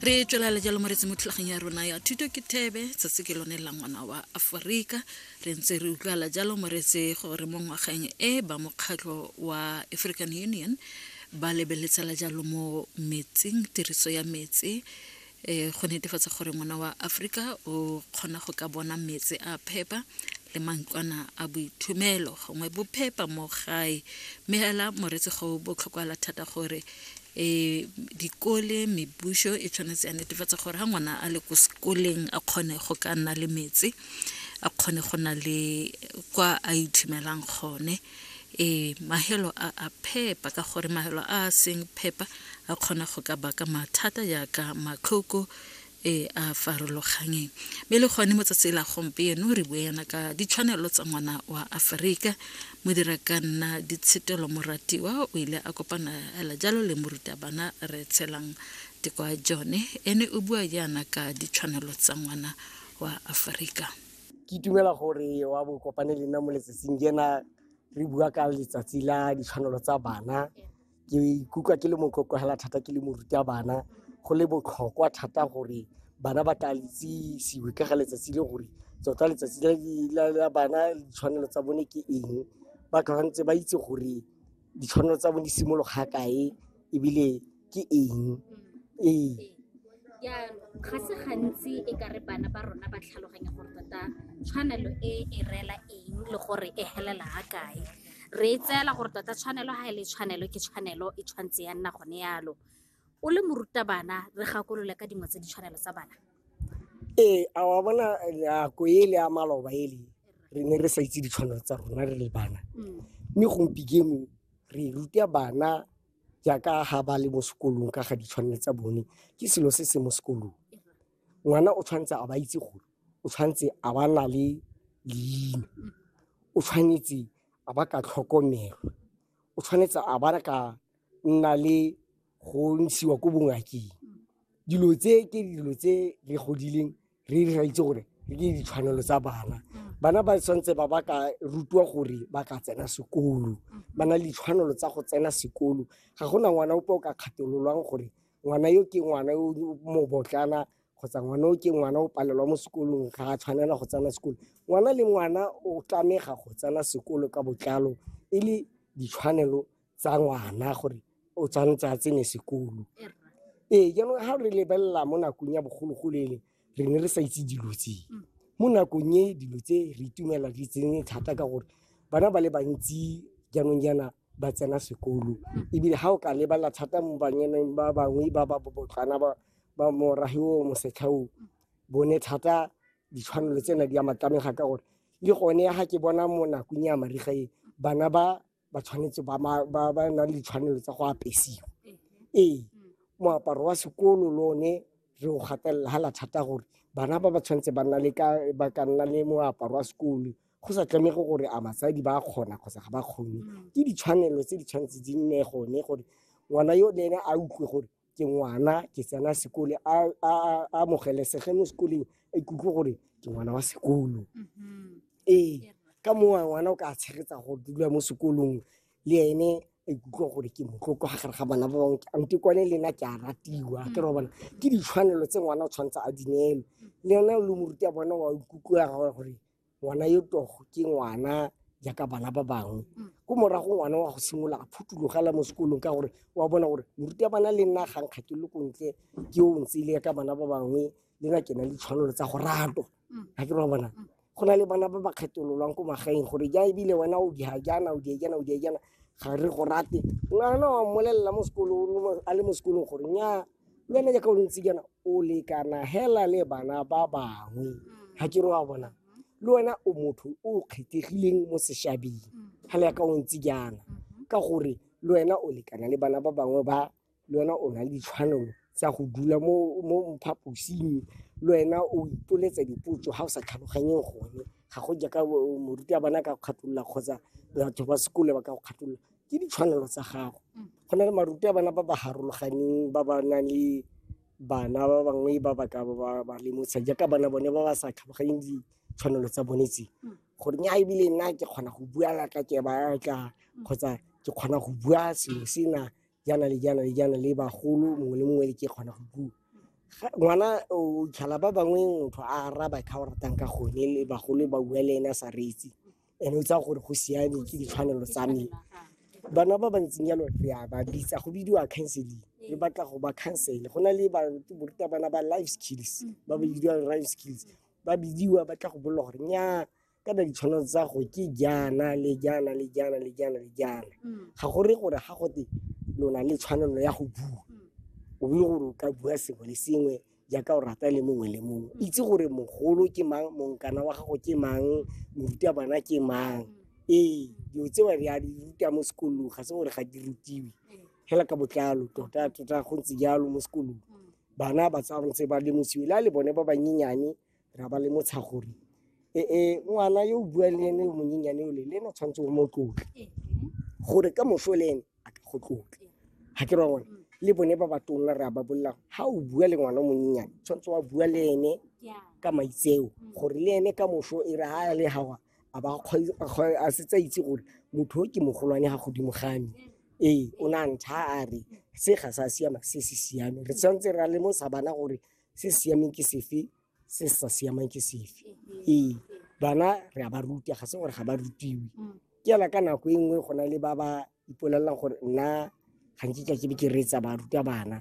re tswelela jalo moretsi mo thulageng ya rona ya thuto ke thebe tsatsi ke lone la ngwana wa aforika re ntse re utlwala jalo moretse gore mo ngwageng e ba mokgatlho wa african union ba lebeletsela jalo mo metsing tiriso ya metsi um go netefatsa gore ngwana wa aforika o kgona go ka bona metsi a phepa le mantlwana a boithomelo gongwe bophepa mo gae mme hela moretse go botlhokwala thata gore um dikole mebuso e tshwanetse ya netefatsa gore ga ngwana a le ko sekoleng a kgone go ka nna le metsi a kgone go na le kwa a ithimelang gone e mahelo a a phepa ka gore mahelo a a seng phepa a kgona go ka baka mathata jaaka matlhoko e a farologanyeng mme le gone motsatsi la gompieno re bue yana ka ditshwanelo tsa ngwana wa aforika mo dira ka nna ditshetelo moratiwa o ile a kopana hela jalo le morutabana re tshelang dikwa jone ene o bua yana ka ditshwanelo tsa ngwana wa aforika ke itumela gore wa bo kopane le nna mo letsatsing jena re bua ka letsatsi la ditshwanelo tsa bana ke ikutlwa ke le motlotlo hela thata ke le morutabana go le botlhokwa thata gore bana ba ka itsisiwe ka ga letsatsi le gore tota letsatsi la bana ditshwanelo tsa bone ke eng ba tshwanetse ba itse gore ditshwanelo tsa bone di simologa kae ebile ke eng ee. Jaanong ga se gantsi e ka re bana ba rona ba tlhaloganya gore tota tshwanelo e e reela eng le gore e helela ga kae re e tseela gore tota tshwanelo ga e le tshwanelo ke tshwanelo e tshwanetse ya nna gone yalo o le morutabana re gakolole ka dingwe tse ditshwanelo tsa bana ee a wa bona nako e le ya maloba e le re ne re sa itse ditshwanelo tsa rona re le bana mm. mme gompieno re ruta bana jaaka ga ba le mo sekolong ka ga ditshwanelo tsa bone ke selo se se mo sekolong ngwana o tshwanetse a ba itse gore o tshwanetse a ba na le leina o tshwanetse a ba ka tlhokomelwa o tshwanetse a ba ka nna le go ntshiwa ko bongakeng dilo tse ke dilo tse re godileng re re itse gore ke ditshwanelo tsa bana bana ba tshwanetse ba ba ka rutiwa gore ba ka tsena sekolo ba na le ditshwanelo tsa go tsena sekolo ga gona ngwana ope o ka kgathololwang gore ngwana yo ke ngwana yo mobotlana kgotsa ngwana o ke ngwana o palelwa mo sekolong ga a tshwanela go tsena sekolo ngwana le ngwana o tlamega go tsena sekolo ka botlalo e le ditshwanelo tsa ngwana gore o tshwanetse a tsene sekolo ee jaanong ga re lebelela mo nakong ya bogologolo ele re ne re sa itse dilo tse mm. mo nakong e dilo tse re itumelela di tsene thata ka gore bana ba le bantsi jaanong jaana ba tsena sekolo mm. ebile ga o ka lebelela thata mo banyeneng ba bangwe ba ba bobotlana ba moragi o mosetlha o mm. bone thata ditshwanelo tsena di ya matlamega ka gore le gone ya ga ke bona mo nakong ya mariga e bana ba ba tshwanetse ba ba nang le ditshwanelo tsa go apesiwa ee moaparo wa sekolo le one re o gatelela ga la thata gore bana ba ba tshwanetse ba ka nna le moaparo wa sekolo go sa tlamege gore a batsadi ba kgona kgotsa ga ba kgone ke ditshwanelo tse di tshwanetse di nne gone gore ngwana yo le ene a utlwe gore ke ngwana ke tsena sekole a amogelesege mo sekoleng a ikutlwe gore ke ngwana wa sekolo mm-hmm. ee ka mowa ngwana o ka tshegetsa go dula mo sekolong le ene a ikutlwa gore ke motloko ga gare ga bana ba bangwe ante kwane le nna ke a ratiwa ke re bona ke ditshwanelo tse ngwana o tshwanetse a dinelo le yone o le moruti ya bona wa ikutlwa gore ngwana yo togo ke ngwana jaaka bana ba bangwe mm. ko morago ngwana wa go simolola a phutulogela mo sekolong ka gore wa bona gore moruti ya bana le nna ga nkga ke lokontle ke o ntse le ka bana ba bangwe le na ke na le tshwanelo tsa go ratwa mm. ga ke ba bona mm. go na le bana ba ba kgetololwang ko magaeng gore ja ebile wena o diga jaana o diejana o diejana ga re go rate ngwana wa mmolelela mo sekolong a le mo sekolong gore nyaa nyana jaaka o le ntse jaana o lekana hela le bana ba bangwe Mm. ga ke re wa bona Mhm. le wena o motho o o kgethegileng mo sešabeng Mm. ga le yaka o ntse jaana Mhm. ka gore le wena o lekana le bana ba bangwe ba le wena o na le ditshwanelo tsa go dula mo mo phaposing le wena o ipoletsa dipotso ga o sa tlhaloganyeng gone ga go jaaka o- moruti a bana ka go kgatolola kgotsa batho ba sekole ba ka go kgatolola ke ditshwanelo tsa gago mm. go na le maruti a bana ba ba harologaneng ba ba nang le bana ba bangwe ba ba ka ba ba lemotsha jaaka bana bone ba ba sa tlhaloganyeng ditshwanelo tsa bone tse mm. gore nya ebile nna ke kgona go bua la ka ke ba tla mm. kgotsa ke kgona go bua selo sena jaana le jaana le jaana le bagolo mongwe le mongwe le ke kgona go bua ngwana o tlhala ba bangwe motho a araba ka o ratang ka gone le bagolo ba bua le ene a sa reetse ene o tsaya gore go siame ke ditshwanelo tsa me bana ba bantseng jalo re a ba bitsa go bidiwa counseling re batla go ba counsele go na le barutabana ba life skills ba ba bidiwa life skills ba bidiwa ba tla go bolela gore nya ka na ditshwanelo tsa go ke jaana le jaana le jaana le jaana le jaana ga go re gore ga gote lona le tshwanelo ya go bua o bile gore o ka bua sengwe le sengwe jaaka o rata le mongwe le mongwe mm. itse gore mogolo ke mang monkana wa gago ke mang moruta bana ke mang mm. ee dilo tse ba di a di ruta mo sekolong ga se gore ga di rutiwe mm. fela ka botlalo tota tota go ntse jalo mo sekolong bana ba tsa ntse ba lemosiwe le a le bone ba banyenyane ra ba le motsha gore ee ngwana yo o buang le ene yo monyenyane ole le ene o tshwanetse o mo tlotle gore ka moso le ene a ka go tlotle ga ke ra gone le bone ba ba tonna re a ba bolela ga o bua le ngwana o monyenyane tshwanetse wa bua le ene ka maitseo gore le ene ka moso e re ga le gawa a ba a setse a itse gore motho o ke mogolwane ga godimo game ee o ne a ntšha a re se ga sa siama se se siame re tshwanetse ra lemosa bana gore se siameng ke sefe se sa siamang ke sefe ee bana re a ba ruta ga se gore ga ba rutiwe mm. ke yana ka nako e nngwe go na le ba ba ipolelelang gore nna ga nkitla ke be ke reetsa ba ruta bana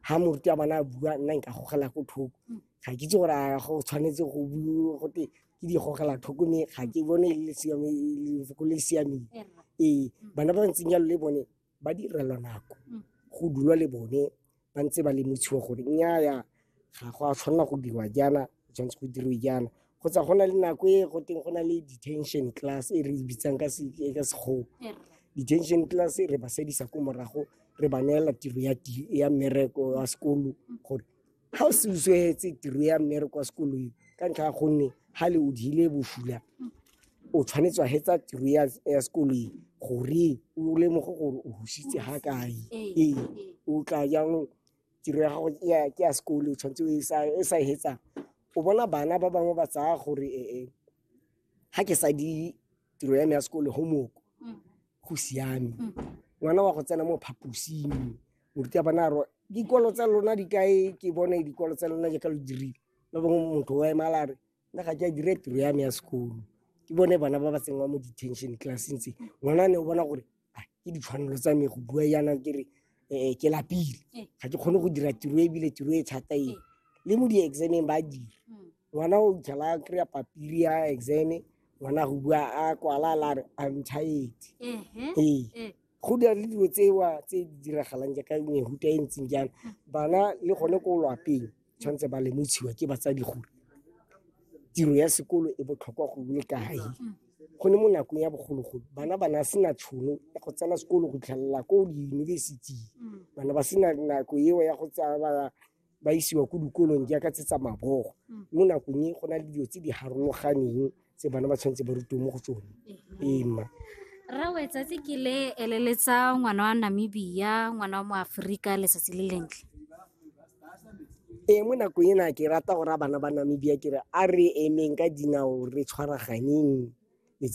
ga mm. moruti wa bana a bua nna nka gogela ko thoko mm. ga ke itse gore a go tshwanetse go bua gote ke di gogela thoko mme ga ke bone e le siameng ee bana ba ntseng jalo le bone ba direlwa nako mm. go dulwa le bone ba ntse ba lemotshiwa gore nnyaya ga go a tshwanela go dirwa jaana tshwanetse go dirwe jaana kgotsa go na le nako e go teng go na le detention class e re e bitsang ka sekgowa detention class e re ba sedisa ko morago re ba neela tiro ya mmereko wa sekolo gore ga o se o swetse tiro ya mmere kwa sekolong ka ntlha ya gonne ga le o dile bosula o tshwanetse wa hetsa tiro ya ya sekolong gore o lemoge gore o husitse ga kae Ee, ee ee. o tla jang tiro ya gago ke ya- ke ya sekolo o tshwanetse o e sa- e sa e hetsang o bona bana ba bangwe ba tsaya gore ee ga ke sa di tiro ya me ya sekolo homework Mm. go siame mm. ngwana wa go tsena mo phaposing moruti ya bana ro dikolo tsa lona di kae ke bone dikolo tsa lona jaaka lo dirile ba bangwe motho wa emala a re nna ga ke a dire tiro ya me ya sekolo ke bone bana ba ba tsenngwa mo detention classeng tse ngwana ne o bona gore ah, ke ditshwanelo tsa me go bua yana ke re um ke lapile eh. ga ke kgone go dira tiro ebile tiro e thata e le mo di-exameng ba dira mm. Ngwana o tlhela a kry-a papiri ya exame ngwana go bua a kwala la re I'm tired. Ee. Go dira le dilo tsewa tse di diragalang jaaka mehuta e ntseng jalo. Bana le gone ko lwapeng tshwanetse ba lemotshiwa ke batsadi gore tiro ya sekolo e botlhokwa go le kae. Go ne mo nakong ya bogologolo bana ba na sena tšhono ya go tsena sekolo go tlhelela ko diyunibesiting. Bana ba sena nako eo ya go tsaya ba ba isiwa ko dikolong jaaka tse tsa mabogo mm. mo nakong e go na le dilo tse di harologaneng tse bana ba tshwanetse ba rutiwe mo go tsone ee mma rawe tsatsi ke le eleletsa ngwana wa namibia ngwana wa mo aforika letsatsi le lentle ee mo nakong ena ke rata gore a bana ba namibia ke re a re emeng ka dinao re tshwaraganeng